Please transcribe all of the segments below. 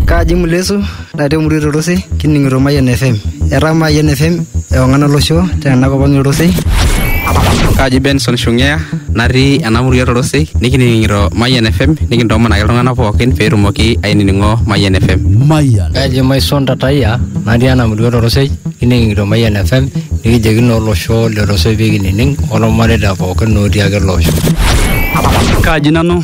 Kaji Mulesu natii emurua e Torosi kining'ito Mayian FM. Etaa Mayian FM ewang'an olosho tenakop ang' e Torosi. Kaji Benson Shungea natii ena murua e Torosi nikining'ito Mayian FM nikintoomon ake iltung'anak pookin pee etumoki ainining'o Mayian FM. Mayian. Kaji Maison Tatayia natii ena murua e Torosi kining'ito Mayian FM nikijoki naa olosho le Torosi pee kinining' olmareita pookin otii ake ele osho. Kaji nanu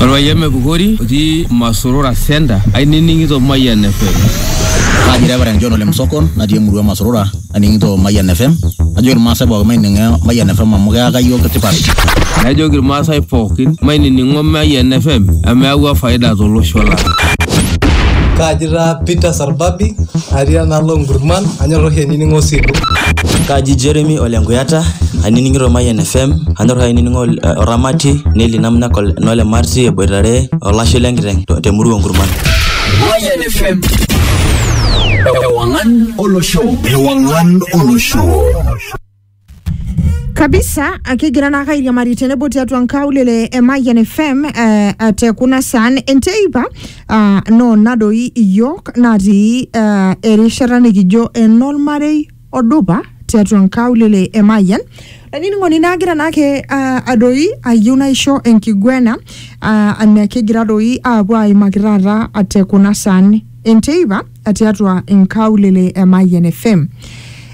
Orpayian Mepukori otii Masorora Center ainining'ito Mayian FM. Kaji Reverend John Ole Msokon natii emurua Masorora aning'ito Mayian FM. Najoki Irmaasai pookin maining'o Mayian FM amu keyaka iyiook tipat. Najoki Irmaasai pookin mainining'o Mayian FM amu eyawua faida tolosho lang'. Kaji taa Peter Arbabi atii enaalo Nkurman anyor oshi ainining'o Osilu. Kaji Jeremy ole Nkuyata ainining'ito Mayian FM anyor oshi ainining'o Oramati Neli Namnak nole Marti eboitare olashe lenkiteng te murua Nkurman. Mayian FM Ewangan Olosho Ewangan Olosho kabisa akigira naa kairiamari tenebo tiatua nkaulele e Mayian FM eh, te kuna saan enteipa ah, no nadoi iyiook natii eh, erishata nikijo enolmarei odupa tiatua nkaulele e Mayian olainining'oni naagira naake ah, adoi ayieu naisho enkiguena ah, anakegira doi aapuo aimaki taata te kuna saan enteipa tiatua inkaulele e Mayian FM.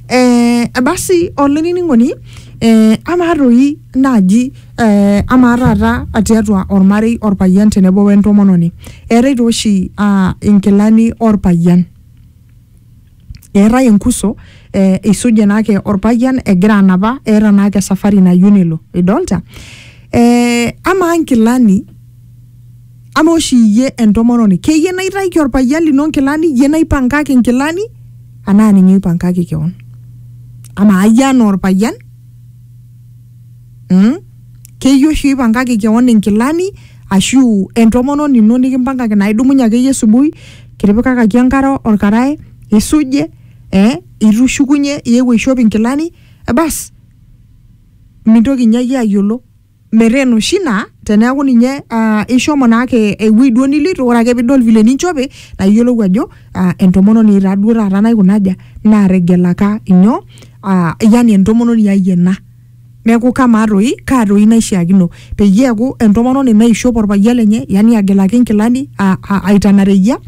Eh, basi olainining'oni eh, amaa toi naaji eh, amaa taata tiatua ormarei orpayian tenebo wentomononi eetae tooshi ah, inkilani orpayian eetae enkuso eh, isuje naake orpayian egira anapa eeta naake safari nayieu nelo idolta eh, amaa nkilani Ama oshi iyie entomononi keyie naitaiki orpayian lino nkilani iyie naipangaki nkilani anaa ninye oipangaki kewon amaa iyie anaa orpayian mm? keyie oshi oipangaki kewon inkilani ashu entomononi ino nikimpangaki naa idumunye akeyie subui kitipikakaki enkare orkarae isuje eh? itu ishukunye iewuo aishop inkilani eh, bas mintoki inye iyie ayiolo. meren oshi naa teneeku ninye ah, ishomo naake ewuei duo niloito ore ake pidol vile ninchope naa iyiolou ajo ah, entomononi taa duo taata naikuna aja nategelaka inyoo ah, yani entomononi ai ena neeku kamaa toi kaa toi naishiakino peyie eeku entomononi naishop orpayian lenye yani agelaki inkilani a- a- aitana reyia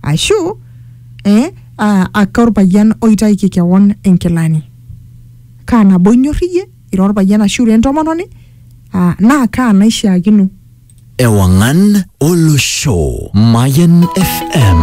ashu eh, ah, ake orpayian oitaiki kewon inkilani kaa nabo inyorr iyie. ira orpayian ashu ira entomononi ah, naa kaa naishiakino Ewangan Olosho. Mayan FM.